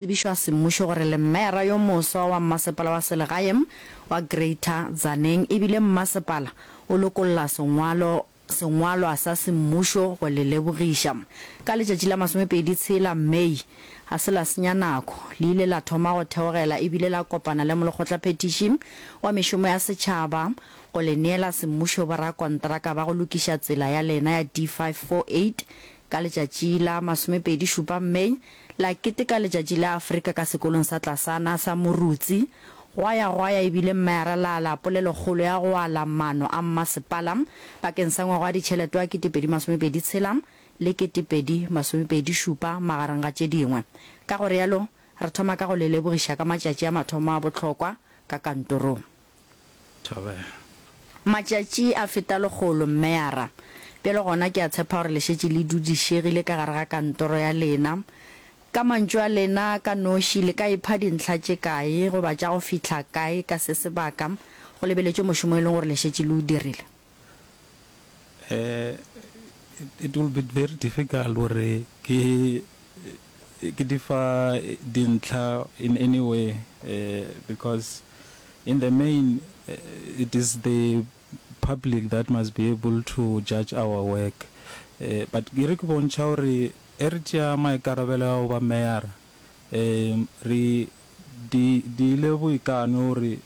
tsebišwa semmušo gore le mmeara yo moswa wa mmasepala wa selegae wa Greater Tzaneen e bile mmasepala o lokolla sengwalo sengwalwa sa semmušo go le lebogiša. Ka letšatši la masomepedi tshela, May, ga se la senya nako, le ile la thoma go theogela e bile la kopana le molekgotlaphethiši wa mešomo ya setšhaba go le neela semmušo borakontraka ba go lokiša tsela ya lena ya D548 Ka letšatši la masomepedi šupa May, la keteka letšatši la Afrika ka sekolong sa Tlasana sa Morutsi. Gwa ya gwa ya e bile mma ya ralala polelokgolo ya go ala mano a mmasepala bakeng sa ngwaga wa ditšhelete wa ketepedi masomepedi tshela le ketepedi masomepedi šupa magareng ga tše dingwe. Ka go realo, re thoma ka go le lebogiša ka matšatši a mathomo a bohlokwa ka kantorong. Thabela. Matšatši a feta lekgolo, Mmeyara. Bjale gona ke a tshepa gore le šetše le dudišegile ka gare ga kantoro ya lena. Ka mantšu a lena ka noši, le ka ipha dintlha tše kae goba tša go fihla kae ka se sebaka go lebeletšwe mošomo e leng gore le šetše le o dirile? It will be very difficult gore ke di fa dintlha in any way because in the main it is the public that must be able to judge our work but ke re ke bontšha gore ge re tšea maikarabelo a go ba Mayor-a re dirile boikano gore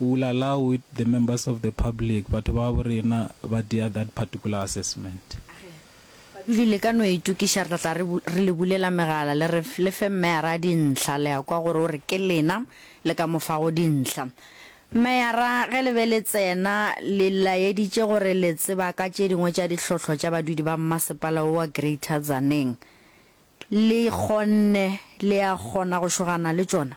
We will allow it the members of the public, batho ba gabo rena ba dea that particular assessment. Ge badudi le ka no itokiša re tla tla re re le bulela megala le re le fe meyara dintlha, le a kwa gore o re ke lena le ka mo fago dintlha. Meyara ge le be le tsena le laeditše gore le tseba ka tše dingwe tša dihlohlo tša badudi ba mmasepala wo wa Greater Tzaneen, le kgonne le a kgona go šogana le tšona?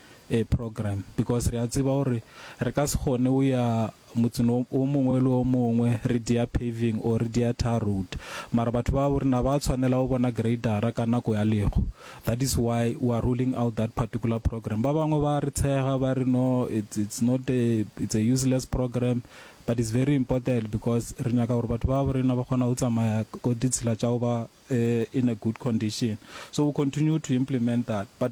a program because re a tseba gore re ka se kgone o ya motseng o mongwe le o mongwe re dia paving or re dia tar road mara batho ba bo rena ba tshwanela o bona gradera ka nako ya lego that is why we are ruling out that particular program ba bangwe ba re tshega ba re no it's, it's not a, it's a useless program but it's very important because re nyaka gore batho ba bo rena ba kgona go tsamaya ko ditshila tša go ba uh, in a good condition so we continue to implement that but